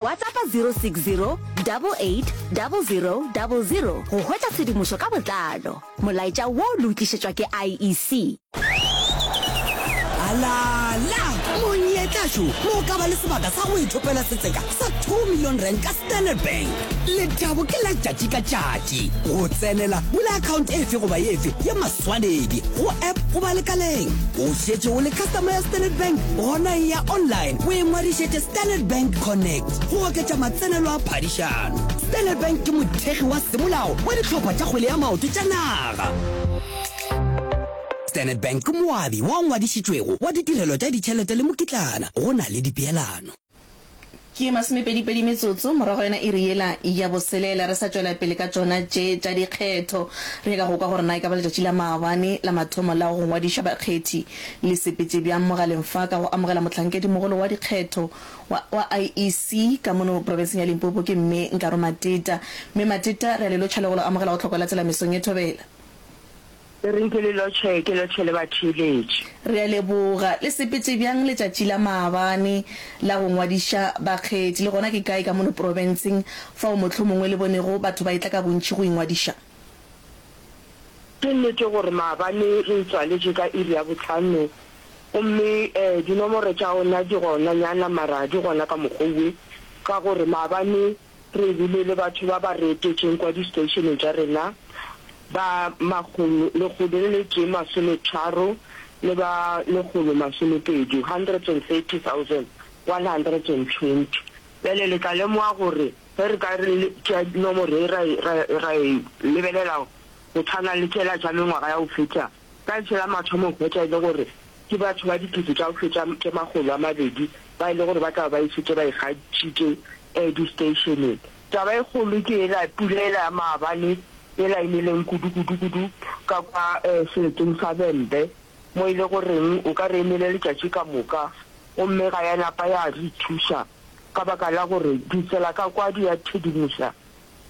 WhatsAppa 060 88 00 00 go hwetša tshedimošo ka botlalo. Molaetša wo le o tlišetšwa ke IEC. Alala! Monyetla šo mo o ka ba le sebaka sa go ithopela setseka sa two million rand ka Standard Bank. Lethabo ke la tšatši ka tšatši. Go tsenela, bula akhaonte efe goba efe ye Tswaledi go app goba lekaleng. O šetše o le customer ya Standard Bank? Gona e ya online o e ngwadišetše Standard Bank Connect go oketša matsenelo a phadišano. Standard Bank ke mothekgi wa semolao wa dihlopha tša kgwele ya maoto tša naga. Standard Bank ke moabi wa ngwadišitšwego wa ditirelo tša ditšhelete le mokitlana go na le dipeelano. Ke masomepedipedi metsotso morago ga yona iri yela ya boselela re sa tšwela pele ka tšona tše tša dikgetho, re nyaka go kwa gore na e ka ba letšatši la maabane la mathomo la go ngwadiša bakgethi le sepetše bjang mogaleng fa ka go amogela mohlankedi-mogolo wa dikgetho wa IEC ka mono profenseng ya Limpopo ke Mme Nkaro Mateta. Mme Mateta, re a le lotšha le go lo amogela go Tlhokwa la Tsela mesong ye thobela. Le reng ke le lotšhe, ke lotšhe le batheeletši? Re a leboga. Le sepetše bjang letšatši la maabane la go ngwadiša bakgethi, le gona ke kae ka mono profenseng fao mohlomongwe le bonego batho ba etla ka bontši go ingwadiša? Ke nnete gore maabane re e tswaletše ka iri ya bohlano, gomme dinomoro tša ona di gonanyana, mara di gona ka mokgwa owe, ka gore maabane Re bile le batho ba ba re etetšeng kwa disteishene tša rena, ba makgolo lekgolo le letee masometharo le ba lekgolo masomepedi, 130,120. Bjale le tla lemoga gore ge re ka re tšea nomoro ye ra e, ra, ra e lebelela go tshwana le tšela tša mengwaga ya go feta, Ka ntlha ya mathomo hwetša e le gore ke batho ba dikete tša go feta tše makgolo a mabedi ba e le gore ba tla be ba e šetše ba ikgantšhitše disteisheneng. Taba e kgolo ke yela pula yela ya maabane yela e neleng kudu kudu kudu ka kwa seleteng sa Vhembe mo e le goreng o ka re e nele letšatši ka moka gomme ga ya napa ya re thuša ka baka la gore ditsela ka kwa di a thedimoša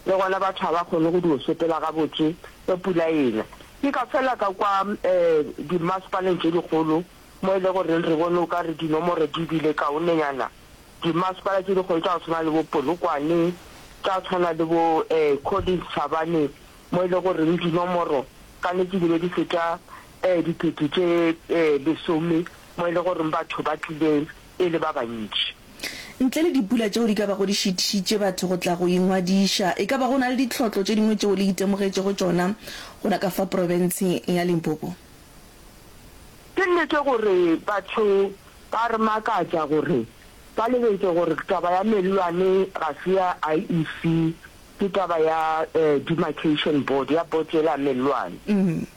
Le gona batho ga ba kgone go dio sepela gabotse ge pula e na. Ke ka fela ka kwa dimmasepaleng tše dikgolo mo e le goreng re bone o ka re dinomoro di bile kaonenyana, dimmasepala tše dikgolo tša go tshwana le bo Polokwane, tša go tshwana le bo Collins Chabane, mo e le goreng dinomoro ka nnete di be di feta dikete tše lesome mo e le goreng batho ba tlile e le ba bantši. Ntle le dipula tšeo di ka bago di šitišitše batho go tla go ingwadiša, e ka ba go na le ditlhotlo tše dingwe tšeo le itemogetšego tšona gona ka fa profenseng ya Limpopo? Ke nnete gore batho ba re makatša gore ba lebetše gore taba ya mellwane ga se ya IEC, ke taba ya Demarcation Board, ya boto yela ya mellwane.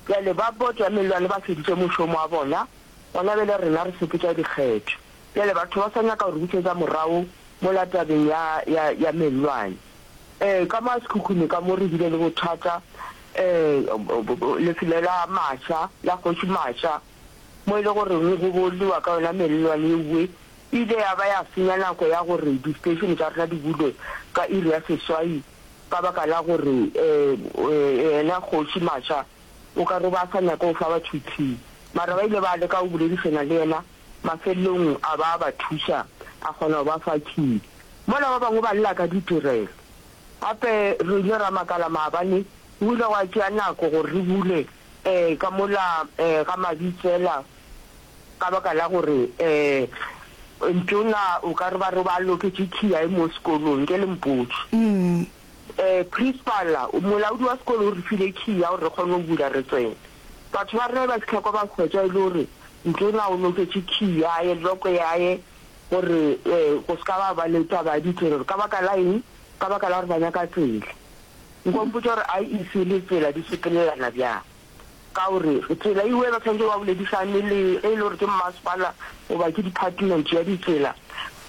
Bjale ba boto ya mellwane ba feditše mošomo wa bona, Gona bjale rena re sepetša dikgetho. Bjale batho ba sa nyaka go re bušetša morago mola tabeng ya, ya, ya mellwane. Ee, ka maa sekhukhune ka mo re bile le bothata, ee, lefelo la Masha, la Kgoši Masha, mo e le go reng go bolliwa ka yona mellwane ewe, e ile ya ba ya senya nako ya gore di-station tša rena di bulwe ka iri ya seswai ka baka la gore, ee, ee, yena Kgoši Masha O ka re ba sa nyake go fa batho itseng, mara ba ile ba leka go boledišana le yena, mafelelong a ba a ba thuša, a kgona go ba fa key. Mola ba bangwe ba lla ka ditirelo. Gape re ile ra makala maabane go ile gwa tšea nako gore re bule um ka mola um ga Mabitsela ka baka la gore um ntona o ka re ba re ba loketše key ya e mo sekolong, nke le mpotše. Principal, Molaodi wa sekolo o re file key ya gore re kgone go bula re tsene. Batho ba rena ba fitlha kwa ba hwetša e le gore ntona o noketše key yaye, lock yaye gore go se ka ba ba le taba ya ditsela gore ka baka la eng, ka baka la gore ba nyaka tsela. Nko mpotša gore IEC le tsela di sepelelana bjang. Ka o re, Tsela e wela, tshwanetse ba boledisane le ge e le gore ke mmasepala goba ke diphatimenti ya ditsela,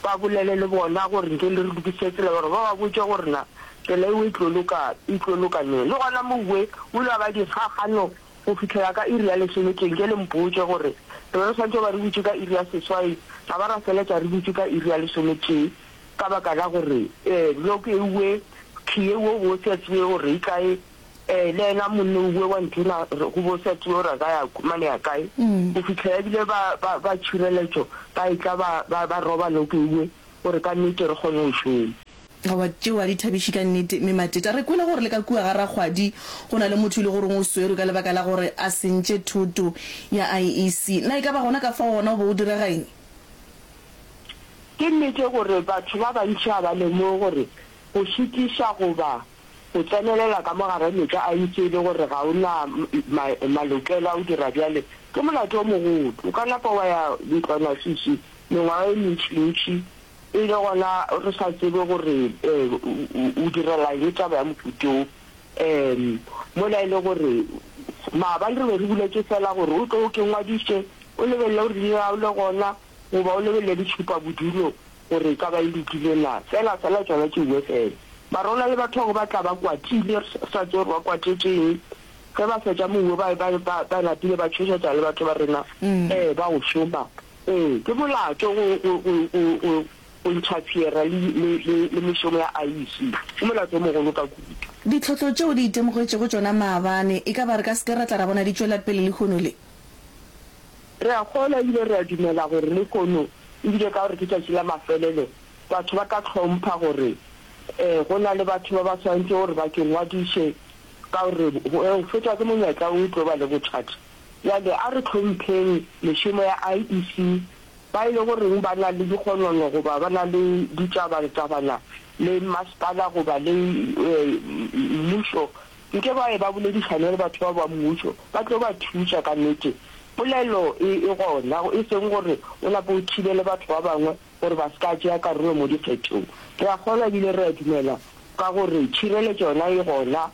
ba bolele le bona gore nke le re lokisitše tsela, gore ba ba botše gore na tsela eo e tlo loka, e tlo loka neng. Le gona Mouwe o ile wa ba dikgakgano go fihlela ka iri ya lesome. Ke nke le mpotše gore re be re swanetše go ba re butše ka iri ya seswai, ra ba ra feletša re butše ka iri ya lesometee ka baka la gore log ewe, khiye wo wo se a tsebe gore e kae. Ee, le yena monne o bue wa nthona re go bosa tio ra ka ya kumane ya kae go fitlha ya bile ba ba ba tshireletso ba etla ba ba ba roba lo ke bue gore ka nnete re kgone go šoma Aowa, tšeo ga di thabiše ka nnete, Mme Mateta. Re kwele gore le ka kua ga rakgwadi go na le motho yo e le goreng o swerwe ka lebaka la gore a sentše thoto ya IEC. Na e ka ba gona ka fao gona o be o direga eng? Ke nnete gore batho ba bantši ga ba lemoge gore go šitiša goba O tsenelela ka mo gare mehla a itše e le gore ga o na ma, malokelo a go dira bjale. Ke molato o mogolo. O ka napa wa ya ntlwanasisi mengwaga e mentšintši e le gona re sa tsebe gore um o direla eng taba ya mohuto wo, um mola e le gore maabane re be re buletše feela gore o tle o ke ngwadiše, o lebelele gore leina la gago le gona. goba o lebelele ditšhupabodulo gore e ka ba e lokile na. Fela, fela tšona ke UFL. Barona le batho ba bangwe ba tla ba kwatile, re sa tsebe gore ba kwatetše'ng. Ge ba fetša moo, ba, ba, ba, ba napile ba tšhošetšana le batho ba rena, Ee, ba go šoma. Ee, ke molato go, go, go, go, go, go inthafiera le, le, le, le mešomo ya IEC. Ke molato o mogolo ka kudu. Ditlhohlo tšeo di itemogetšego tšona maabane, e ka ba re ka se ke ra tla ra bona di tšwela pele lehono le? Re a kgolwa e bile re a dumela gore lehono e bile ka gore ke tšatši la mafelelo, batho ba ka hlompha gore ee, go na le batho ba ba swanetše gore ba ke ngwadiše, ka gore go fetwa ke monyetla wo o tlo ba le bothata. Bjale a re hlompheng mešomo ya IEC, ba e le goreng ba na le dikgonono goba ba na le ditaba-tabana le masepala goba le mmušo nke ba ye ba boledišane le batho ba ba mmušo, ba tlo ba thuša. Ka nnete, polelo e e gona, e seng gore o lape o thibele batho ba bangwe gore ba se ka tšea karolo mo dikgethong. Re a kgolwa e bile re a dumela ka gore tšhireletšo yona e gona.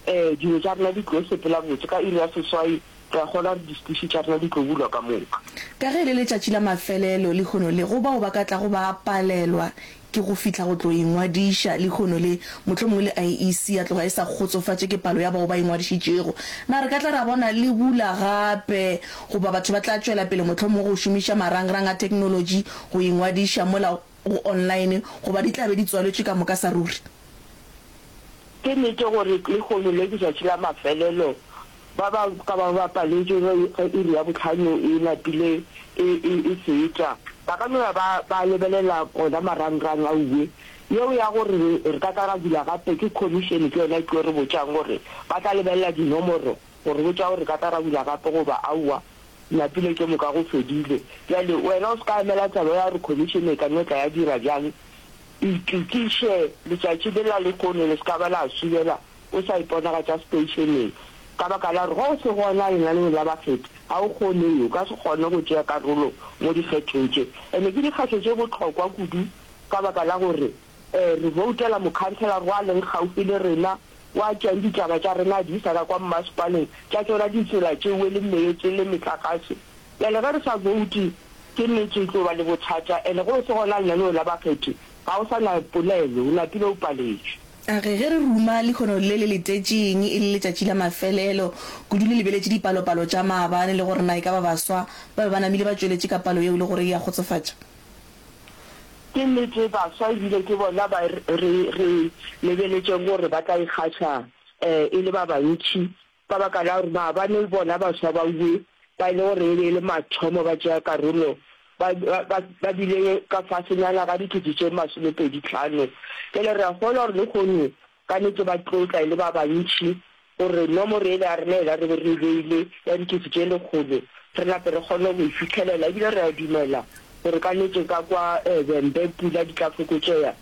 Ee, dilo tša rena di tlo sepela botse ka iri ya seswai Re a kgolwa gore distuši tša rena di tlo bulwa ka moka. Ka ge e le letšatši la mafelelo lehono le, go bao ba ka tlago ba palelwa ke go fihla go tlo ingwadiša lehono le, mohlomongwe le IEC ya tloga e sa kgotsofatše ke palo ya bao ba ingwadišitšego, na re ka tla ra bona le bula gape goba batho ba tla tšwela pele mohlomongwe go šomiša marangrang a theknolotši go ingwadiša mola go online goba di tla be di tswaletšwe ka moka sa ruri? Ke nete gore lehono le ke tšatši la mafelelo. Ba ba ka ba ba paletšwe ge ge iri ya bohlano e napile e, e, e feta, ba ka no ya ba, ba lebelela ona marangrang a uwe. Yeo ya gore re, re ka tla ra bula gape, ke khomišene ke yona e tlo re botšang gore ba tla lebelela dinomoro go re botša gore re ka tla ra bula gape goba aowa. Napile tše moka go fedile. Bjale wena o se ka emela taba ya gore khomišene e ka no tla ya dira bjang. Itokiše, letšatši le la lehono le se ka ba la subela o sa iponagatša seteišeneng, ka baka la gore ge o se gona lenaneong la bakgethi, ga o kgoneyo, o ka se kgone go tšea karolo mo dikgethong tše. Ene ke dikgetho tše bohlokwa kudu ka baka la gore re voutela mokhanselara wa leng kgaufhi le rena, wa tšeang ditaba tša rena a di isa ka kwa mmasepaleng, tša tšona ditsela tšeo e leng meetse le metlakase. Bjale ge re sa bouti ke nnete e tlo ba le bothata and go se gona lenaneo la bakgethi ga o sa na polelo o lapile o paletšwe. A re ge re ruma lekhono le le letetšeng e le letšatši la mafelelo kudu le lebeletše dipalopalo tša maabane le gore na e ka ba baswa ba be ba namile ba tšweletše ka palo yeo le gore e a kgotsofatša. Ke nnete baswa e bile ke bona ba re re lebeletšeng gore ba tla ikgatha e le ba bantši Ka baka la gore na ba ne le bona baswa ba Uwe ba e le gore e be e le mathomo ba tšea karolo, ba, ba, ba bile ka fasenyana ga dikete tše masomepedi tlhano. Bjale re a kgolwa gore lehono ka nnete ba tlo tla e le ba bantši, gore nomoro yela ya rena yela re be re e beile ya dikete tše lekgolo re nape re kgone go e fihlelela. Ebile re a dumela gore ka nnete ka kwa Vhembe pula di tla fokotšea.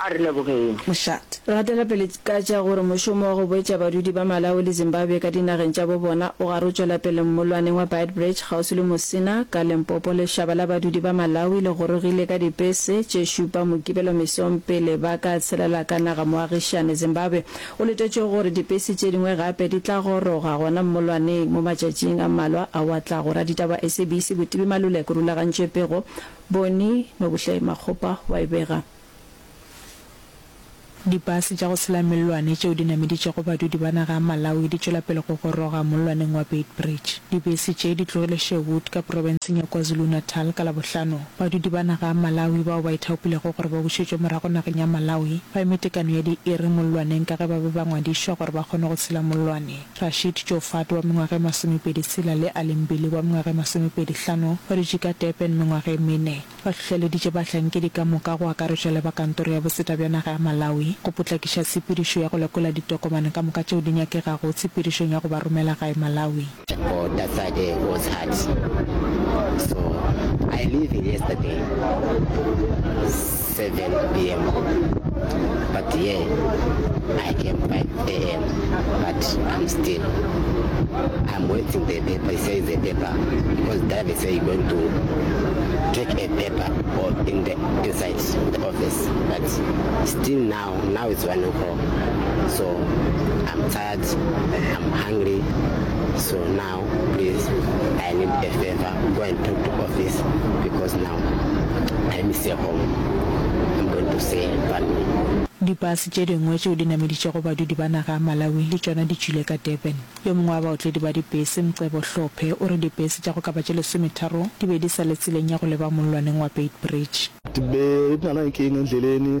A re lebogeng. Mshat. Re gatela pele ka tša gore mošomo wa go boetša badudi ba Malawi le Zimbabwe ka dinageng tša bo bona o gare o tšwela pele mmolwaneng wa Beitbridge kgauswi le Musina, ka Limpopo. Lešaba la badudi ba Malawi le gorogile ka dipese tše šupa Mokibelo mesong pele ba ka tshelela ka naga-moagišane Zimbabwe. Go letetšwe gore dipese tše dingwe gape di tla goroga gona mmolwaneng mo matšatšing a mmalwa ao a tlago. Raditaba wa SABC Botibi Maluleke o rulagantše pego Bone Nobuhle Makgopa wa e bega. Dibase tša go sela mellwane tšeo di nameditšego badudi ba naga ya Malawi di tšwela pele go goroga mollwaneng wa Beitbridge. Dibese tše di tlogile Sherwood ka profenseng ya KwaZulu-Natal ka Labohlano. Badudi ba naga ya Malawi bao ba ithaopilego gore ba bušetšwe morago nageng ya Malawi ba eme tekano ya diiri mollwaneng ka ge ba be ba ngwadišwa gore ba kgone go sela mollwane. Rashid Joufat wa mengwaga e masomepedi tshela le Ali Mbili wa mengwaga e masomepedi hlano ba dutše ka Durban mengwaga e mene. Ba hlohleleditše bahlankedi ka moka go akaretšwa le ba Kantoro ya Boseta bja naga ya Malawi go potlakiša tshepedišo ya go lekola ditokomane ka moka tšeo di nyakegago tshepedišong ya go ba romela gae Malawi. Or that Saturday was hard so I leaving yesterday. 7pm but yeah I came 5am but I'm still I'm waiting the paper he says the paper because David said you're going to take a paper or in the inside the office but still now now it's one o'clock so I'm tired I'm hungry so now Now please I need a favor go and talk to office because now I miss a home I'm going to say family. Dibase tše dingwe tšeo di nameditšego badudi ba naga ya Malawi le tšona di tšwile ka Durban. Yo mongwe wa baotledi ba dibese, Mcebo Hlophe, o re dibese tša go ka ba tše lesometharo di be di sa le tseleng ya go leba mollwaneng wa Beitbridge. Di be di na le keng endleleni?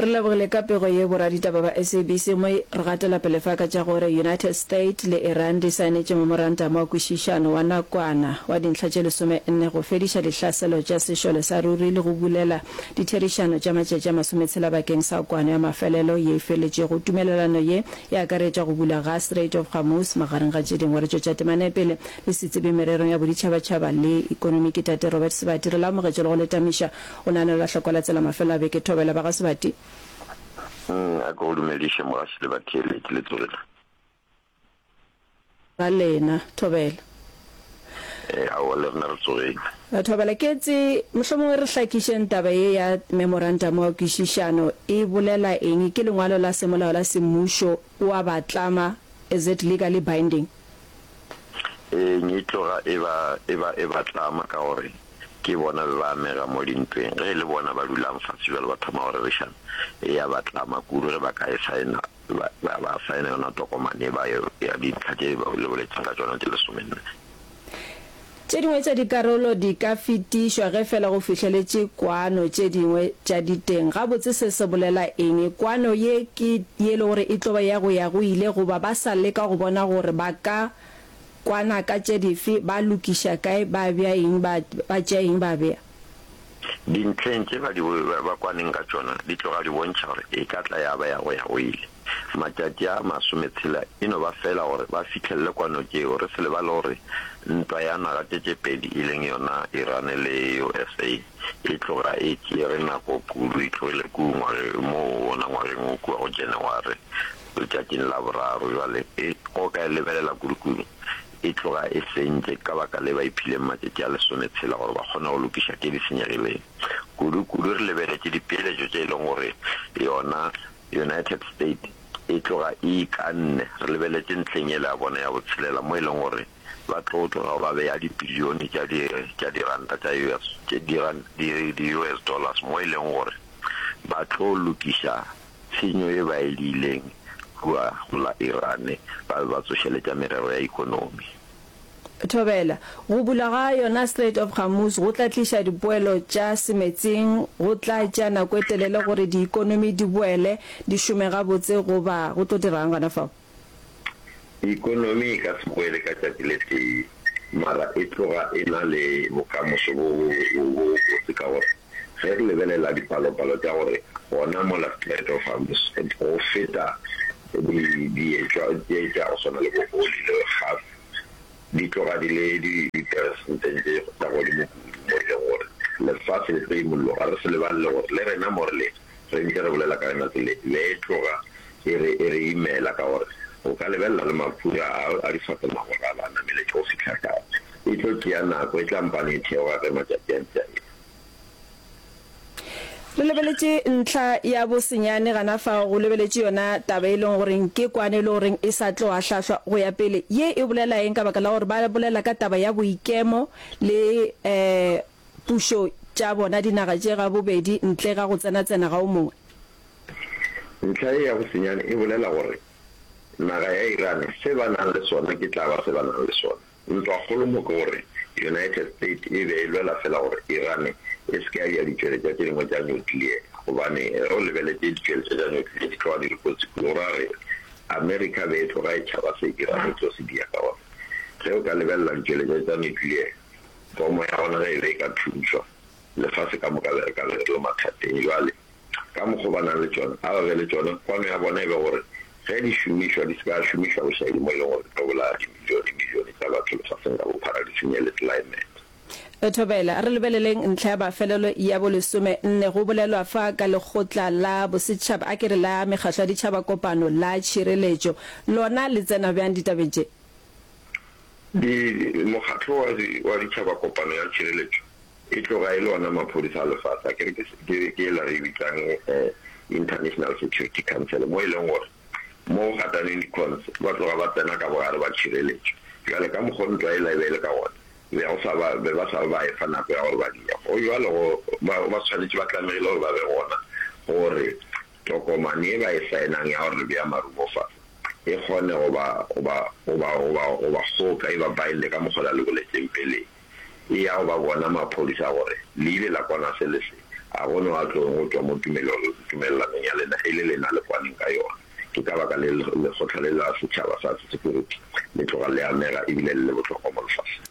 Re lebogile ka pego ye boraditaba ba SABC mo re gatela pele fa ka tša gore United State le Iran di saenetše memorantamo wa kwešišano wa nakwana wa dintlha tše lesome nne go fediša dihlaselo tša sešole sa ruri le go bulela ditherišano tša matšatši a masometshela bakeng sa kwano ya mafelelo ye e feletšego tumelelano ye e akaretša go bulwa ga Strait of Hormuz magareng ga tše dingwe re tšwetša temanepele le setsebing mererong ya boditšhabatšhaba le ekonomi ke Tate Robert Sebati re le amogetše le go le tamiša O naganela lahloko la tsela mafelo a beke thobela ba ga Sebati. A ke go dumediše mogaši le batheeletši le tsogile. Ga lena thobela. Ee aowa le rena re tsogile. Thobela ke etse mohlomongwe re hlakišeng taba ye ya memorantamo wa kwišišano e bolela eng ke lengwalo la semolao la semmušo wa batlama is it legally binding. Ee e tloga e ba e ba e batlama ka gore. ke bona be ba amega mo dintweng. Ge e le bona ba dulang fase bjale ba thoma go rerišana, e ya ba tlama kudu ge ba ka e saena, ba, ba, ba saena yona tokomane e ba ya dintlha tše ba le boletseng ka tšona tše lesomenne. Tše dingwe tša dikarolo di ka fetišwa ge fela go fihleletše kwano tše dingwe tša diteng. Gabotse se se bolela eng? Kwano ye ke ye e lego gore e tlo ba ya go ya go ile goba ba sa leka go bona gore ba ka Kwana ka tše dife? Ba lokiša kae? Ba bea eng? Ba, ba tšea eng ba bea? Dintlheng tše ba di, ba, ba kwaneng ka tšona, di tloga di bontšha gore e ka tla ya ba ya go ya go ile. Matšatši a masometshela e no ba feela gore ba fihlelele kwano tšeo, re se lebale gore ntwa ya naga tše tše pedi e leng yona Irane le USA e tloga e tšere nako kudu, e tlogile kua ngwageng, moo wona ngwageng wo kua go Janaware. Letšatšing la boraro, bjale, e go ka e lebelela kudu kudu e tloga e sentše, ka baka le ba iphileng matšatši a lesometshela gore ba kgone go lokiša tše di senyegileng. Kudu kudu re lebeletše dipeeletšo tše e lego gore yona United States e tloga e ikanne, re lebeletše ntlheng yela ya bona ya botshelela mo e lego gore ba tlo tloga ba bea dibilione tša di, tša diranta tša US, tše di, di US dollars mo e lego gore ba tlo lokiša Tshenyo ye baeli ileng rua la Iran ba be ba tsošeletša merero ya ekonomi. Thobela, Go bula ga yona Strait of Hormuz go tla tliša dipoelo tša semetseng, go tla tšea nako e telele gore diikonomi di boele di šome gabotse goba go tlo dira'ng gona fao? Ekonomi e ka se boele ka tšatši le tee, mara e tloga e na le bokamoso bo bobotse ka gore ge re lebelela dipalopalo tša gore gona mola Strait of Hormuz go feta dietšwa tše tša go swana le bo oli le gas di tloga di le diperesenteng tše tša godimo kudu mo e lego gore lefase le tlo imolloga. Re se lebalele gore le rena mo re lego Re ntše re bolela ka yona se le e tloga e re e re imela ka gore o ka lebelela le mafura a a di fase magoralo a nameletše go fihla tlase. E tlo tšea nako, e tla mpane e theoga ge matšatši a ntše a eya. Re lebeletše ntlha ya bosenyane gana fao, go lebeletše yona taba e leng gore ke kwane e le gore e sa tlo ahlaahlwa go ya pele. Ye e bolela eng ka baka la gore ba bolela ka taba ya boikemo le, eh, pušo tša bona dinaga tše ga bobedi ntle ga go tsenatsena ga o mongwe. Ntlha ye ya go senyane e bolela gore naga ya Iran se ba nang le sona ke tla ba se ba nang le sona. Ntwa kgolo mo ke gore United States e be e lwela fela gore Iran e se ke ya dira ditšweletšwa tše dingwe tša nuclear gobane ge o lebeletše ditšweletšwa tša nuclear di tloga di le kotsi kudu go ra gore America be e tloga e tšhaba se Iran e tlo se dira ka gore ge o ka lebelela ditšweletšwa tša nuclear Pomo ya gona ge e be e ka thuntšhwa, lefase ka moka le re ka be re le mathateng. Bjale, ka mokgwa o ba nang le tšona, a ba be le tšona, kwano ya bona e be gore ge di šomišwa, di se ka šomišwa bošaedi mo e leng gore di tlo bolaya dimilionemilione tša batho lefaseng ka bophara, di senye le tlelaemete. Thobela, a re lebeleleng ntlha ya mafelelo ya bolesome nne. Go bolelwa fa ka Lekgotla la Bosetšhaba, a ke re la Mekgatlo ya Ditšhaba, Kopano, la Tšhireletšo. Lona le tsena bjang ditabeng tše? Di, Mokgatlo wa, wa Ditšhaba Kopano ya Tšhireletšo e tloga e le ona maphodisa a lefase, akere ke, ke, ke ela re e bitsang eh, International Security Council, mo e leng gore mo go gataneng di-cons ba tloga ba tsena ka bogare ba tšhireletšo. Bjale ka mokgwa o ntwa yela e be e le ka gona, be go sa ba, be ba sa ba ba efa nako ya gore ba di, go bjalo go, ba, ba swanetše, ba tlamegile gore ba be gona gore Tokomane ye ba e saenang ya gore re bea marumo fase e kgone go ba, go ba, go ba, go ba, go ba kgoka, e ba binde ka mokgwa o la le boletšeng peleng, e ya go ba bona maphodisa gore le ile la kwana se le se. A go no a tloeng go tšwa mo tumelong, tumelelanong ya lena e le lena le kwaneng ka yona? Ke ka baka le lekgotla le la setšhaba sa Security le tloga le amega e bile le le bohlokwa mo lefaseng.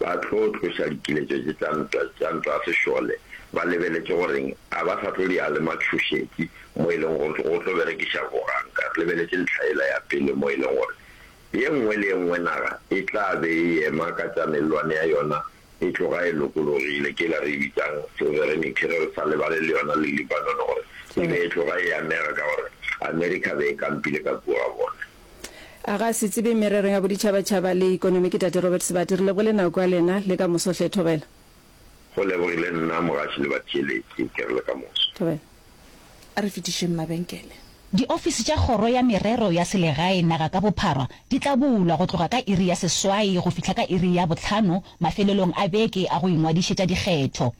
ba tlo tloša dikiletšo tše tša ntwa tša ntwa ya sešole, ba lebeletše goreng a ba sa tlo di a le matšhošetši mo e leng gore go tlo berekiša boganka. Re lebeletše ntlha yela ya pele mo e leng gore ye nngwe le ye nngwe naga e tla be e ema ka tša mellwane ya yona e tloga e lokologile, ke yela re e bitsang sovereignty, re sa lebale le yona le Lebanon gore e be e tloga e amega ka gore America be e kampile ka kua ga bona. A ga se tsebe merero ya boditšhabatšhaba le ikonomi ke Tate Robert Sebati. Re lebogile nako ya lena le ka moso hle. Thobela. Go lebogile nna mogatši le batheeletši. Ke re le ka moso. Thobela. A re fetišeng mabenkele. Diofisi tša Kgoro ya Merero ya Selegae naga ka bophara di tla bulwa go tloga ka iri ya seswai go fihla ka iri ya bohlano mafelelong a beke a go ingwadišetša dikgetho.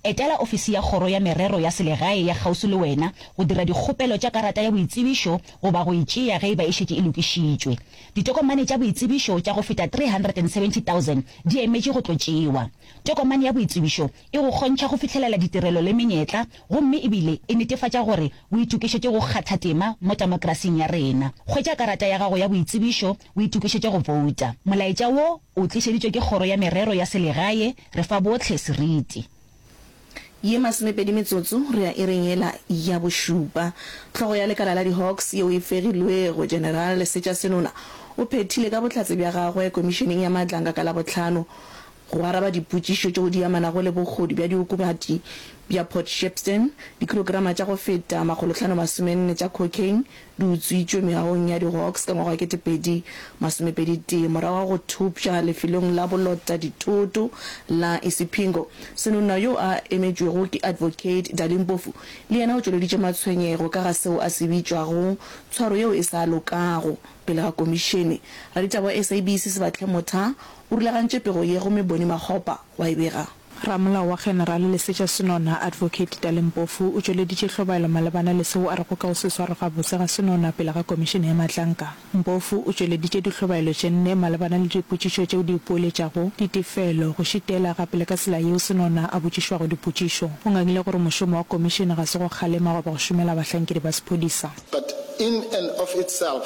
Etela ofisi ya Kgoro ya Merero ya Selegae ya kgauswi le wena go dira dikgopelo tša karata ya boitsebišo goba go e tšea ge e ba e šetše e lokišitšwe. Ditokomane tša boitsebišo tša go feta 370,000 di emetše go tlo tšewa. Tokomane ya boitsebišo e go kgontšha go fihlelela ditirelo le menyetla gomme e bile e netefatša gore o itokišetše go kgatha tema mo temokrasing ya rena. Hwetša karata ya gago ya boitsebišo O itokišetše go bouta. Molaetša wo o tlišeditšwe ke Kgoro ya Merero ya Selegae. Re fa bohle seriti. Ye masomepedi metsotso re ya iring yela ya bošupa. Hlogo ya lekala la di-Hawks yeo e fegilwego, General Lesetša Senola, o phethile ka bohlatse bja gagwe Komišeneng ya Matlanga ka Labohlano go araba dipotšišo tšeo di amanago le bogodu bja diokobatši bja Port Shepstone, dikilograma tša go feta makgolohlanomasomenne tša cocaine, di utswitšwe meagong ya di-Hawks ka ngwaga wa ketepedi masomepedi tee morago ga go thopša lefelong la bolota dithoto la Isipingo. Senonna yo a emetšwego ke Advocate Dali Mpofu le yena o tšweleditše matshwenyego ka ga seo a se bitšwago tshwaro yeo e sa lokago pele ga komišene. Raditaba wa SABC Sebatlhe Motha o rulagantše pego ye gomme Bonnie Makgopa wa e bega. Ramolao wa General Lesetša Senona, Advocate Tale Mpofu, o tšweleditše hlobaelo malebana le seo a rego ka go se swarwe gabotse ga Senona pele ga Komišene ya Matlanka. Mpofu o tšweleditše dihlobaelo tše nne malebana le dipotšišo tšeo di ipoeletšago, ditefelo, go šitela, gape le ka tsela yeo Senona a botšišwago dipotšišo. O ngangile gore mošomo wa Komišene ga se go kgalema goba go šomela bahlankedi ba sephodisa. But in and of itself,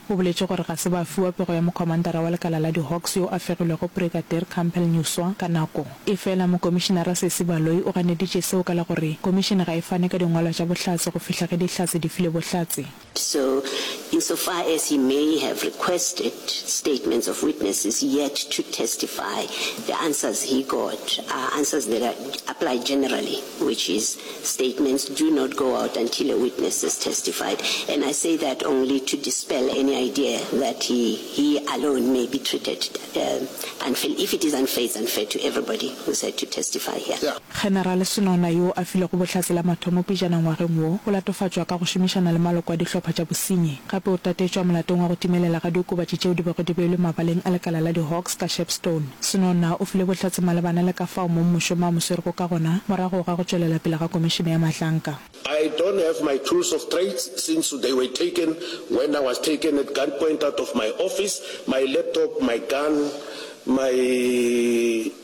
O boletše gore ga se ba fiwa pego ya mokhomantara wa lekala la di-Hawks yo a fegilwego Brigadier Campbell Nyuswa ka nako. Efela Mokomišinara Sesi Baloyi o ganeditše seo ka la go re Komišene ga e fane ka dingwalwa tša bohlatse go fihla ge Dihlatse di file bohlatse. So, insofar as he may have requested statements of witnesses yet to testify, the answers he got are answers that apply generally. which is statements do not go out until a witness has testified and I say that only to dispel any idea that he he alone may be treated uh, unfair. If it is unfair, it's unfair to everybody who said to testify here. Yeah. General Senona yo a filego bohlatse la mathomo pejana ngwageng wo o latofatšwa ka go šomišana le maloko a dihlopha tša bosenyi. Gape o tatetšwa molatong wa go timelela ga diokobatši tšeo di bego di beilwe mabaleng a lekala la di-Hawks ka Shepstone. Senona o file Bohlatse malebana le ka fao mong mošomo a mo swerego ka gona morago ga go tšwelela pele ga Komišene ya Mahlanka. I don't have my tools of trades since they were taken when I was taken at gunpoint out of my office, my laptop, my gun, my.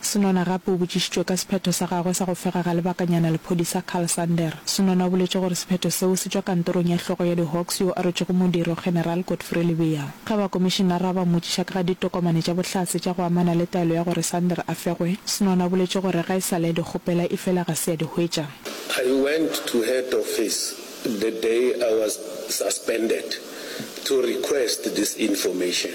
Senona gape o botšišitšwe ka sephetho sa gagwe sa go fega ga lebakanyana lephodisa Karl Sander. Senona o boletše gore sephetho seo se tšwa kantorong ya hlogo ya di-Hawks yo a rwetšego modiro, General Godfrey Lebeya. Ge bakomišinara ba mmotšiša ka ga ditokomane tša bohlatse tša go amana le taelo ya gore Sander a fegwe, Senona o boletše gore ga e sa le a di kgopela efela ga se a di hwetša. I went to head office the day I was suspended to request this information.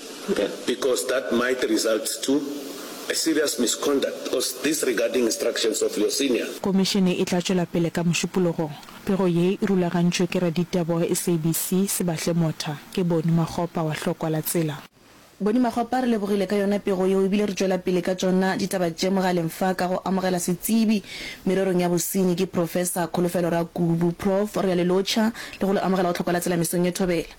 because that might result to a serious misconduct or disregarding instructions of your senior. Komišene e tla tšwela pele ka Mošupologong. Pego ye e rulagantšwe ke Raditebogo, SABC, Sebahle Motha, ke Boni Makgopa wa Hlokwa la Tsela. Boni Makgopa re lebogile ka yona pego yeo ebile re tšwela pele ka tšona ditaba tše mogaleng fa ka go amogela setsebi mererong ya bosenyi ke Professor Kholofelo Rakubu. Prof. Re a le lotšha le go le amogela go Hlokwa la Tsela mesong ye thobela.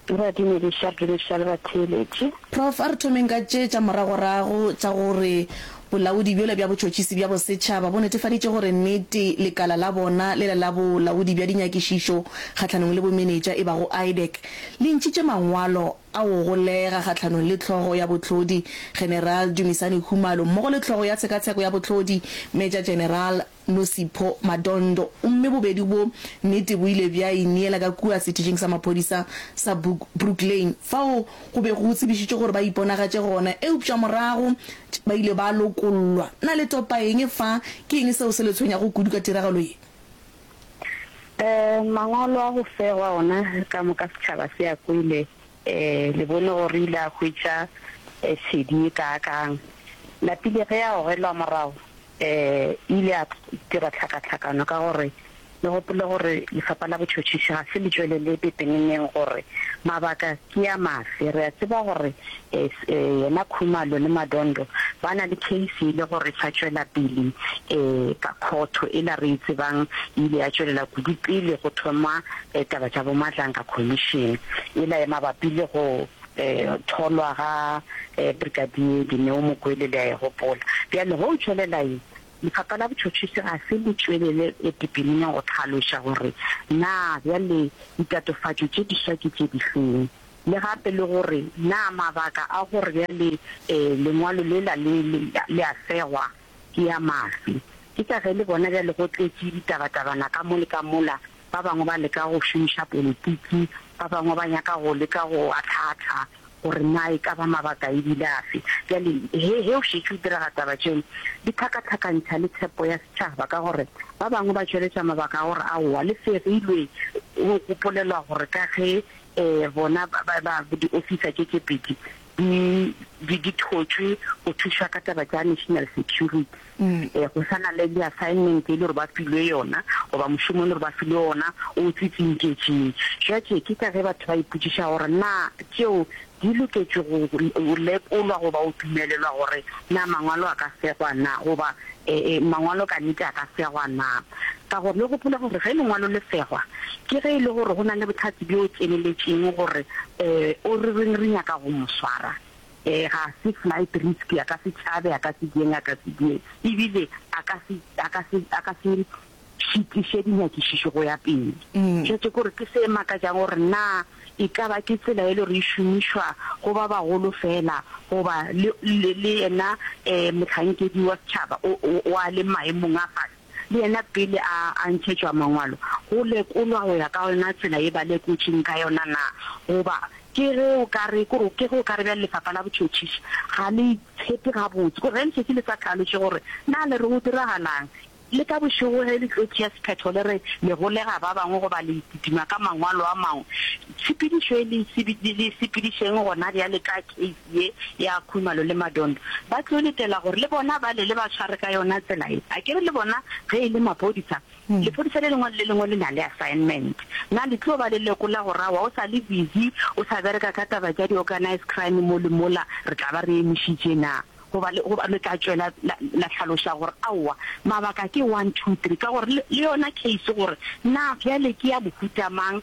Ke ba dumediša diriša le batheeletši. Prof. A re thomeng ka tše tša moragorago tša gore bolaodi bjole bja botšhotšhisi bja bosetšhaba bo netefaditše gore nnete lekala la bona le le la bolaodi bja dinyakišišo kgahlanong le bomenetša e bago IDEC le ntšhitše mangwalo a go golega kgahlanong le Hlogo ya Bohlodi General Dumisani Khumalo mmogo le Hlogo ya Tshekatsheko ya Bohlodi Major General Nosipho Madondo, gomme bobedi bo nnete bo ile bja ineela ka kua sethišing sa maphodisa sa Brook Lane, fao go bego go tsebišitšwe gore ba iponagatše gona, eupša morago ba ile ba lokollwa. Na le topa eng fa? Ke eng seo se le tshwenyago kudu ka tiragalo ye? Ee, mangwalo a go fegwa ona ka moka setšhaba se a kwele. Ee, le bone gore re ile ra hwetša tshedi ye kaakang. Lapile ge a gogelwa morago, E ile ya dira tlhakatlhakano ka gore le gopole gore Lefapha la Botšhotšhisi ga se le tšwelele pepeneneng gore mabaka ke a mafe. Re a tseba gore yena Khumalo le Madondo ba na le case e le gore e sa tšwela pele ka khotho, ela re e tsebang e ile ya tšwelela kudu pele go thoma taba tša bo Madlanka Commission ela e mabapi le go Go tholwa ga Brigadier Dineo Mokwele le a e gopola. Bjale go tšwelela ye, Lefapha la Botšhotšhisi ga se le tšwelele pepeneneng go hlaloša gore na bjale ditatofatšo tše diswa ke tše difeng le gape le gore na mabaka a gore bjale lengwalo lela le a segwa ke ya maswi. Ke ka ge le bona bjale go tletše ditabatabana ka mo le ka mola, ba bangwe ba leka go šomiša politiki, ba bangwe ba nyaka go leka go ahlaahlaa gore na e ka ba mabaka e bile afe. Bjale he, he o šetše o diraga taba tšeo, di hlakahlakantšha le tshepo ya setšhaba ka gore ba bangwe ba tšweletša mabaka a gore aowa, le fegilwe go gopolelwa gore ka ge um bona ba, ba, ba, diofisa tše tše pedi di di di thotšwe go thuša ka taba tša national security eh, go sana le di assignment e le gore ba filwe yona goba mošomo e le gore ba filwe ona o tsitsinketšeng jwatše ke ka ge batho ba ipotsiša gore na tšeo di loketše go lekolwa goba o dumelelwa gore na mangwalo a ka segwa na goba eh, eh, mangwalo ka nete a ka segwa na Ka gore le gopola gore ge lengwalo le segwa, ke ge e le gore go na le bohlatse bjo tseneletšeng gore o re reng re nyaka go mo swara. Ga se flight risk, a ka se tšhabe, a ka se dieng, a ka se dieng, e bile a ka se, a ka se, a ka se šitiše dinyakišišo go ya pele. Tšhwetše ke gore ke se makatšang gore na e ka ba ke tsela e le gore e šomišwa go ba bagolo feela goba le, le, le yena mohlankedi wa setšhaba o, o, o a le maemong a fase. le yena pele a a ntšhetšwa mangwalo, go lekolwa go ya ka yona tsela ye ba lekotšeng ka yona na, goba ke ge o ka re, kore ke ge o ka re bjale lefapha la botšhotšhisi ga le itshepe gabotse, kore ge le šetše le sa tlhalotše gore na le re go diragalang, le ka bošego ge le tlo tšea sephetho le re le golega ba bangwe goba le kitima ka mangwalo a mangwe, tshepedišo ye le e sepedišeng gona bjale ka K. ye ya Khumalo le Madondo, ba tlo letela gore le bona ba le le ba tshware ka yona tsela ye. A ke re le bona ge e le mapodisa, lepodisa le lengwe le le lengwe le na le assignment. Na le tlo ba le lekola gore awa o sa le busy o sa bereka ka taba tša di-organised crime mo le mola re tla ba re emišitše na? Goba le, goba le tla tšwela la, la hlaloša gore aowa, mabaka ke one, two, three, ka gore le, le yona case gore na bjale ke ya mohuta mang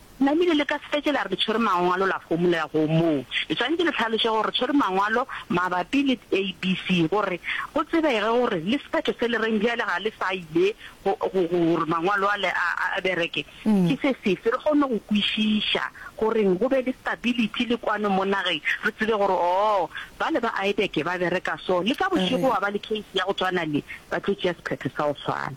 Na le ile le ka se fetše la re le tšhwere Mangwalo la homolela go moo? Le swanetše le hlaloše gore re tšhwere Mangwalo mabapi le ABC gore go tsebege gore le sephetho se le reng bjale ga le sa ile go, go, go, gore Mangwalo ale a, a bereke ke se sefe. Re kgone go kwešiša goreng go be le stability le kwano mo nageng, re tsebe gore, oo, bale ba Aebeke ba bereka so, le ka bošego wa ba le case ya go tswana le, ba tlo tšea sephetho sa go swana.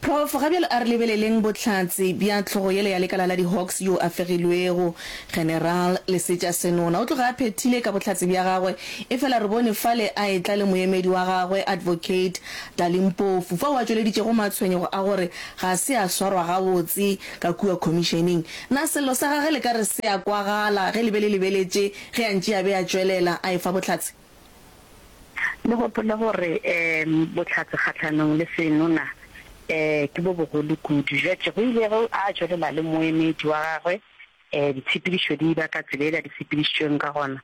Prof. Ga bjale a re lebeleleng bohlatse bja hlogo yela ya lekala la di-Hawks yo a fegilwego, General Lesetša Senona. O tloga a phethile ka bohlatse bja gagwe efela re bone fale a etla le moemedi wa gagwe, Advocate Dali Mpofu, fao a tšweleditšego matshwenyego a gore ga se a swarwa gabotse ka kua khomišeneng. Na sello sa gage le ka re se a kwagala ge le be le lebeletše ge a ntše a be a tšwelela a efa bohlatse? Le gopole gore bohlatse kgahlanong le senona ke bo bogolo kudu. Judge go ile ge a tšwelela le moemedi wa gagwe, ditshepedišo di ba ka tsela yela di sepedišitšweng ka gona.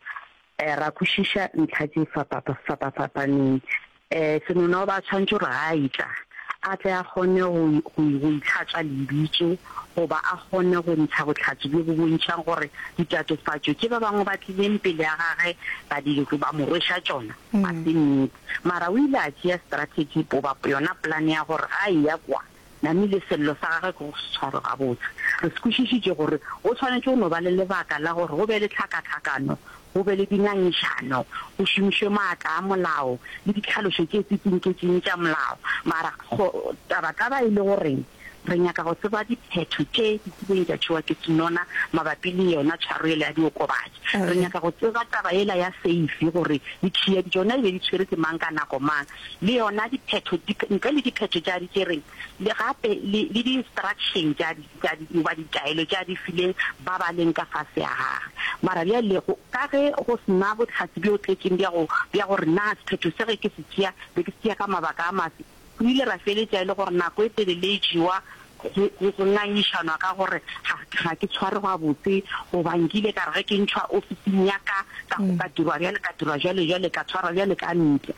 Ra kwešiša ntlha tše fapapa-fapaneng. E, Senonoba a tshwanetše gore ga a etla, a tle a kgone go, go, go itlhatswa lebitso, goba a kgone go ntsha bohlatse bjo bo bontšhang gore ditatofatšo tše ba bangwe ba tlileng pele ga gagwe ba di, ba mo rweša tšona, ga se nnete. Mara o ile a tšea strategy, goba yona polane ya gore ga a eya kwa, Nami le sello sa gagwe ke go se tshware gabotse. Re se kwešišitše gore go swanetše go no ba le lebaka la gore go be le tlhakatlhakano, go be le dingangišano, go šomišwe maatla a molao le ditlhalošo tše tsitsinketsiñe tša molao. Mara go, taba, taba e le gore re nyaka go tseba diphetho tše di kileng tša tšewa ke Sinona mabapi le yona tshwaro yela ya diokobatši. Re nyaka go tseba taba yela ya seifi gore ditšhiya di tšona e be di tshwere ke mang ka nako mang. le yona diphetho di, ntle le diphetho tša di tšereng, le gape le, le di-instruction tša di, tša di, goba ditaelo tša di fileng ba ba leng ka fase ya gagwe. Mara bjale, go, ka ge go se na bohlatse bjo tletšeng bja go, bja gore na sephetho se ge ke se tšea, be ke se tšea ka mabaka a mafe, re ile ra feletša e le gore nako e telele e jewa go, go, go ngangišanwa ka gore ga, ga ke tshware gabotse, goba nkile ka re ge ke ntšhwa ofising ya ka, ka go ka dirwa bjale, ka dirwa bjale, bjale ka tshwarwa bjale ka ntle.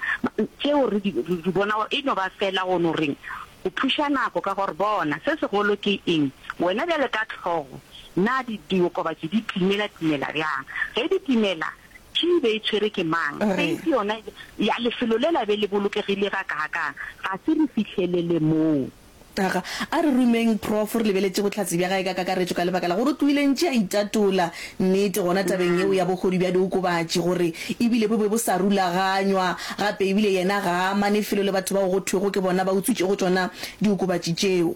Tšeo re di, re di bona gore e no ba feela go no reng, go phuša nako. Ka gore bona, se segolo ke eng, wena bjale ka hlogo, na di, diokobatši di timela, timela bjang? Ge di timela, key e be e tshwere ke mang? Safe yona ya lefelo lela be le bolokegile gakaakang? Ga se re fihlelele moo. Aga, a re rumeng prof. Re lebeletše bohlatse bja gae ka kakaretšo ka lebaka la gore o tlohile ntše a itatola nnete gona tabeng yeo ya bogodu bja diokobatši gore e bile bo be bo sa rulaganywa gape e bile yena ga a amane felo le batho bao go thwego ke bona ba utswitšego tšona diokobatši tšeo.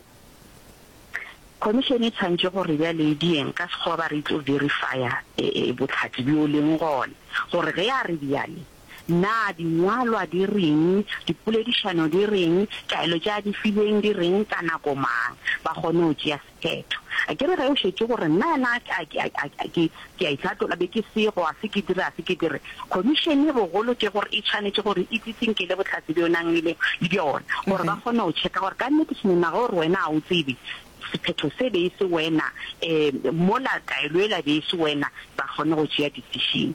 Khomišene e tshwantšhe gore bjale e di eng ka sekgowa ba re e tlo verifya bohlatse bjo leng gona gore ge a re bjale. Na Dingwalwa di reng? Dipoledišano di reng? Taelo tša di filweng di reng ka nako mang? Ba kgone go tšea sephetho. A ke re ge o šetše gore, Nna yana a ke, a, a, a ke, ke a itlhatola, be ke sego, ga se ke dire, ga se ke dire. Khomišene bogolo ke gore e tshwanetše gore e tsitsinkele bohlatse bjo o nang le bjona, gore ba kgone go tšheka gore ka nnete seno na gore wena ga o tsebe, sephetho se be e se wena, um mola taelo yela be e se wena, ba kgone go tšea decision.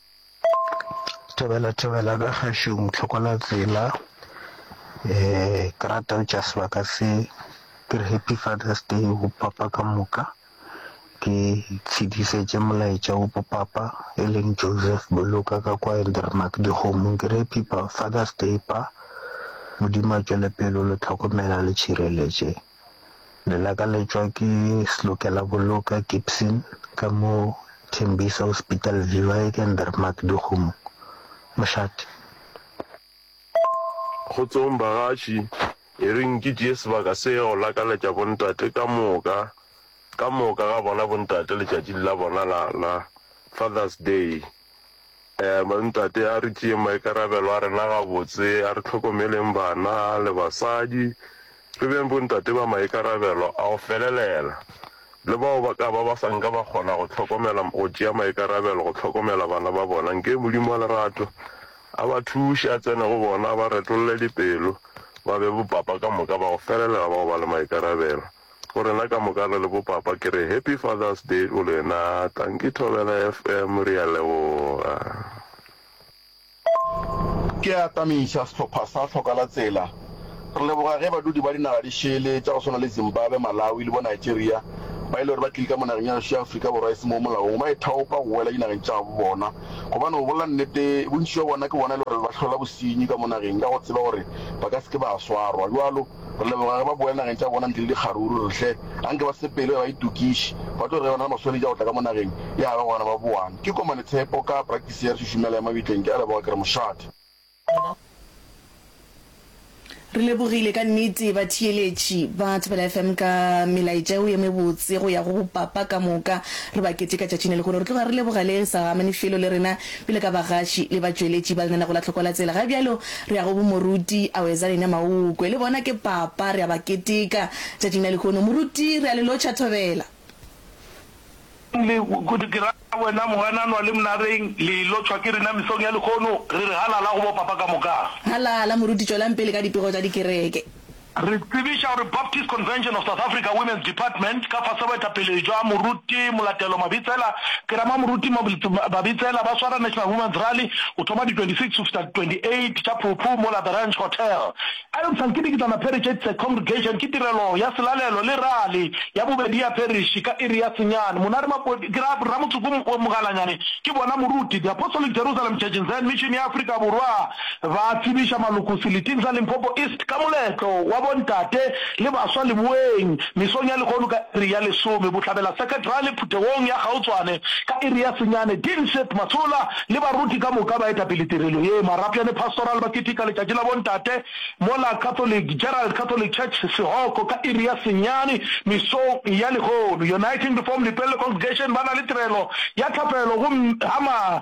Thobela thobela ka kgašong tlhokola tsela um ke rata go tšea sebaka se ke re happy father's day go papa ka moka ke tshedišetše molaetša wo go papa e leng Joseph Boloka ka kwa Eldermark Dikgomong ke re happy father's day pa Modimo a tšwele pele o le tlhokomela a le tšhireletše. Le lakaletšwa ke Slukela-Boloka Gibson ka mo Tembisa Hospital Viewer e ke Ndermark Dikgomo, mošate. Kgotsong bagatši, e reng ke tšee sebaka se go lakaletša bontate ka moka, ka moka ga bona bontate letšatšing la bona la, la Father's Day. Bontate a re tšeeng maikarabelo a rena gabotse, a re hlokomeleng bana le basadi, re beng bontate ba maikarabelo a go felelela, le bao ba ka ba ba sa nka ba kgona go hlokomela go tšea maikarabelo go hlokomela bana ba bona, nke Modimo wa lerato a ba thuše, a tsene go bona, a ba retolle dipelo, ba be bopapa ka moka ba go felelela ba go ba le maikarabelo. Go rena ka moka re le bo papa ke re happy father's day go lena tanki thobela FM re ya leboga. Ke a atamiša sehlopha sa Tlhokalatsela. Re leboga ge badudi ba dinaga di šele tša go swana le Zimbabwe, Malawi le bo Nigeria ba e le gore ba tlile ka mo nageng ya gešo ya Afrika Borwa e se mo molaong ba ithaopa go boela dinageng tša gabo bona gobane go bolela nnete bontši bja bona ke bona e le gore ba hlola bosenyi ka mo nageng ka go tseba gore ba ka se ke ba swarwa bjalo Re leboga ge ba boela nageng tša bona ntle le dikgaruru. Re re, Hle, a nke ba sepele ge ba itokiše. Ba tlo re ge ba na le maswanedi a go tla ka mo nageng ya gabo gona ba boane. Ke Komane Tshepo ka praktisi ya re šušumela ya mabitleng. Ke a leboga, ke re mošate. Re lebogile ka nnete batheeletši ba Thobela FM ka melaetša yeo ye mebotse go ya go bopapa ka moka. Re ba keteka tšatšing le lehono. Re tloga re leboga le sa amane felo le rena Bjalo ka bagaši le batšweletši ba lenaneo la Tlhoko la Tsela, ga bjalo re ya go bo Moruti Awezalenia Maukwe. Le bona ke papa, re a ba keteka tšatšing la lehono. Moruti, re a le lotšha thobela. Le, kudu ke ra wena Mogananwa le Mnareng, le lotšhwa ke rena mesong ya lehono. Re re halala go bo papa ka moka. Halala, Moruti, tšwelang pele ka dipego tša dikereke. Re tsebiša gore Baptist Convention of South Africa Women's Department ka fase boetapele bja Moruti Molatelo Mabitsela, Kerama Moruti Mabitsela ba swara National Women's Rally go thoma di 26 go fihla di 28 tša Phukhu mola The Ranch Hotel. A Eupša nke dikitlana parish it's a congregation ke tirelo ya selalelo le rally ya bobedi ya parish ka iri ya senyane. Monare Mapodi ke ra Ramotsoko Mogalanyane ke bona Moruti The Apostolic Jerusalem Church in Zion Mission ya Afrika Borwa. ba tsebiša maloko seliting sa Limpopo East ka moletlo wa bontate le baswa leboeng mesong ya lehono ka iri ya lesome, Bohlabela Seketrale phuthegong ya kgaotšwane ka iri ya senyane, Dean Seth Masola le baruti ka moka ba etapele tirelo ye, Marapjane Pastoral ba ketika letšatši la bontate mola Catholic Gerald Catholic Church Sehoko ka iri ya senyane mesong ya lehono, Uniting to Form Lepelle Congregation ba na le tirelo ya thapelo gomme ha ma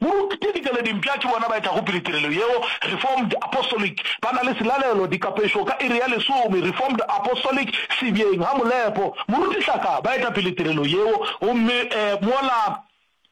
Moruti dikeleding pša ke bona ba etago pele tirelo yeo, Reformed Apostolic, ba na le selalelo, dikapešo, ka iri ya lesome, Reformed Apostolic, Sebjeng, ga Molepo, Moruti Hlaka, ba eta pele tirelo yeo, gomme e, mola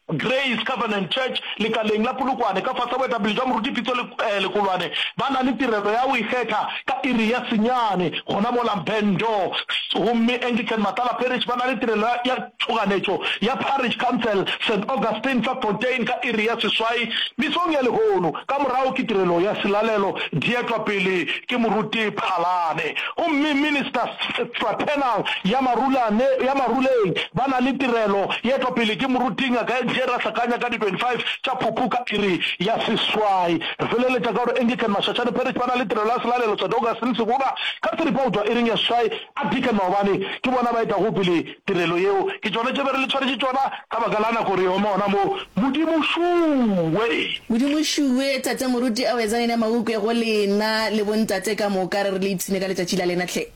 Grace Covenant Church, lekaleng la Polokwane, ka fase ga boetapele bja Moruti Pitso le, e, Lekolwane, ba na le tirelo ya go ikgetha ka iri ya senyane, gona mola Mpendo, gomme Anglican Matala Parish ba na le tirelo ya, ya. tšhoganetšo ya Parish Council St Augustine fa Fontein ka iri ya seswai mesong ya lehono, ka morago ke tirelo ya selalelo dietwa pele ke moruti Phalane gomme Minister Fraternal ya marulane ya maruleng ba na le tirelo yetwa pele ke moruti Ngaka Engie Rahlakanya ka di 25 tša Phupu ka iri ya seswai. Re feleletša ka gore Anglican Mashashane Parish ba na le tirelo ya selalelo St Augustine Segoba ka seripao tšwa iring ya seswai a Deacon Maobane ke bona ba etago pele tirelo yeo, ke tšona tše be re le tshwaretše tšona ka baka la nako re oma gona moo. Modimo šuwe! Modimo šuwe! Tate Moruti, ao etsang ena maukwe go lena le bontate ka moka, re re le ipshine ka letšatši la lena hle.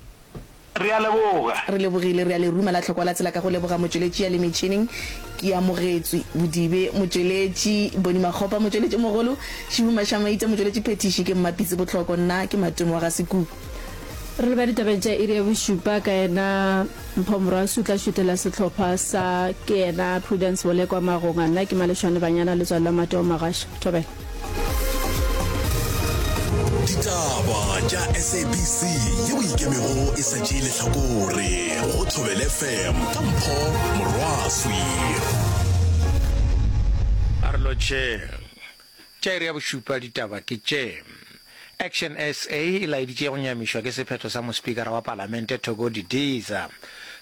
Re a leboga. Re lebogile, re a le ruma la hlokwa la tsela ka go leboga motšweletši ya le metšhining, ke amogetswe. Bodibe, motšweletši, Boni Makgopa, motšweletši mogolo, Šibu Mašamaita, motšweletši phethiši, ke Mmapitsi Bohloko, nna ke Matumo wa ga Sekubu. Re leba ditabeng tša iri ya bošupa ka yena Mpho Morasu tla šutela sehlopha sa ke yena Prudence Bolekwa Magonga. Nna ke Malešwane Banyana letswalo la Mateo Magasha. Thobela. Ditaba tša SABC ye o ikemego e sa tšee lehlakore go Thobela FM ka Mpho Morwaswi. A re lotšheng. Tša iri ya bošupa ditaba ke tše. Action SA e laeditše go nyamišwa ke sephetho sa mospikara wa palamente Thoko Didiza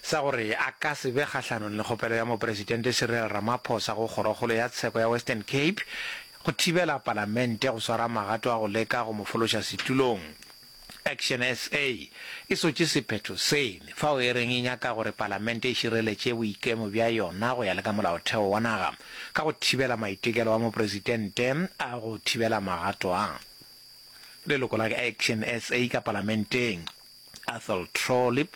sa gore a ka se be kgahlanong le kgopelo ya mopresidente Cyril Ramaphosa go kgorokgolo ya tsheko ya Western Cape go thibela palamente go swara magato a go leka go mo fološa setulong. Action SA e sotše sephetho sene fao e reng e nyaka gore palamente e šireletše boikemo bja yona go ya le ka molaotheo wa naga ka go thibela maitekelo a mopresitente a go thibela magato a leloko la Action SA ka palamenteng, Athol Trollip,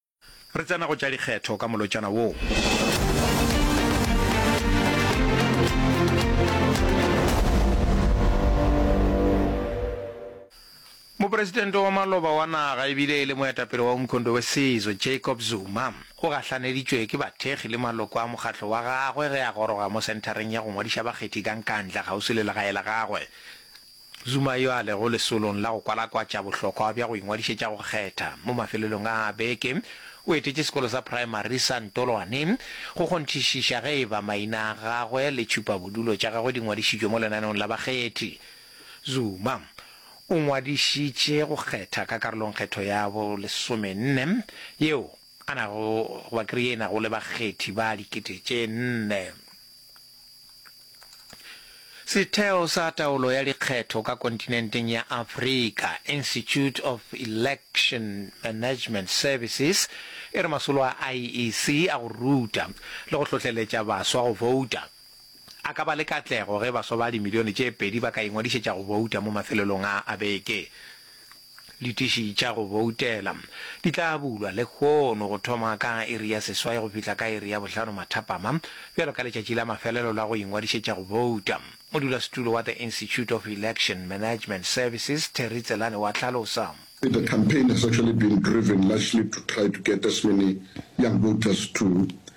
Re tsena go tša dikgetho ka molotšana wo. Mopresidente wa maloba wa naga e bile e le moetapele wa Umkhondo Wesizwe, Jacob Zuma, o gahlaneditšwe ke bathekgi le maloko a mokgatlo wa gagwe ge a goroga mo senthareng ya go ngwadiša bakgethi ka Nkandla kgauswi le legae la gagwe. Zuma yo a lego lesolong la go kwalakwatša bohlokwa bja go ingwadišetša go kgetha, mo mafelelong a beke o etetše sekolo sa praemari sa Ntolwane go kgonthišiša ge eba maina a gagwe le tšhupabodulo tša gagwe di ngwadišitšwe mo lenaneong la bakgethi. Zuma o ngwadišitše go kgetha ka karolong kgetho ya bo lesomenne yeo. A na go ba kree e nago le bakgethi ba dikete tše nne? Setheo sa taolo ya dikgetho ka kontinenteng ya Afrika, Institute of Election Management Services, e re masolo a IEC a go ruta le go hlohleletša baswa go bouta a ka ba le katlego ge baswa ba dimilione tše pedi ba ka ingwadišetša go bouta mo mafelelong a a beke. Ditiši tša go boutela di tla bulwa lehono go thoma ka iri ya seswai go fihla ka iri ya bohlano mathapama, bjalo ka letšatši la mafelelo la go ingwadišetša go bouta. Modulasetulo wa The Institute of Election Management Services, Terry Tselane wa hlalosa. The campaign has actually been driven largely to try to get as many young voters to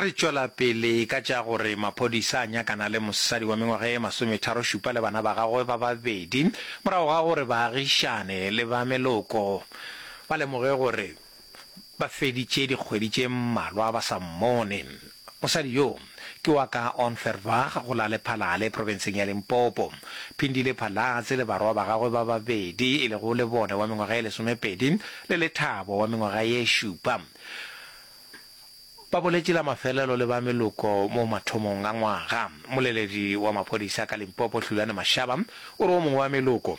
Re tšwela pele ka tša gore maphodisa a nyakana le mosadi wa mengwaga e masometharo-šupa le bana ba gagwe ba babedi morago ga gore baagišane le ba meloko ba lemoge gore Ba feditše dikgwedi tše mmalwa ba sa mmone. Mosadi yo ke wa ka Ontherwag go la Lephalale profenseng ya Limpopo. Phindile Phalatse le barwa ba gagwe ba babedi e lego Lebone wa mengwaga ye lesomepedi le Lethabo wa mengwaga ye šupa ba boletše la mafelelo le ba meloko mo mathomong a ngwaga. Mmoleledi wa maphodisa ka Limpopo Hlulane Mashaba o re o mongwe wa meloko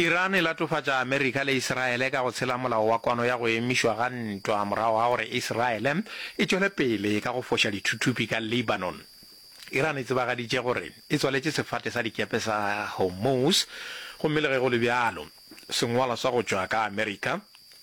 Iran e latofatša Amerika le Iseraele ka go tshela molao wa kwano ya go emišwa ga ntwa morago ga gore Iseraele e tšwele pele ka go foša dithuthupi ka Lebanon. Iran e tsebagaditše gore e tswaletše sefate sa dikepe sa Hormuz gomme le ge go le bjalo, sengwalwa sa go tšwa ka Amerika,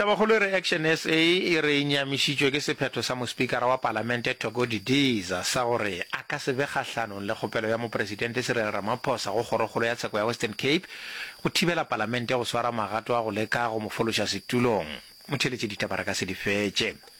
Tabakgolo e re Action SA e re e nyamišitšwe ke sephetho sa mospikara wa palamente Thoko Didiza sa gore a ka se be kgahlanong le kgopelo ya mopresidente Cyril Ramaphosa go kgorokgolo ya tsheko ya Western Cape go thibela palamente go swara magato a go leka go mo fološa setulong. Motheeletšeditaba re ka se di fetše.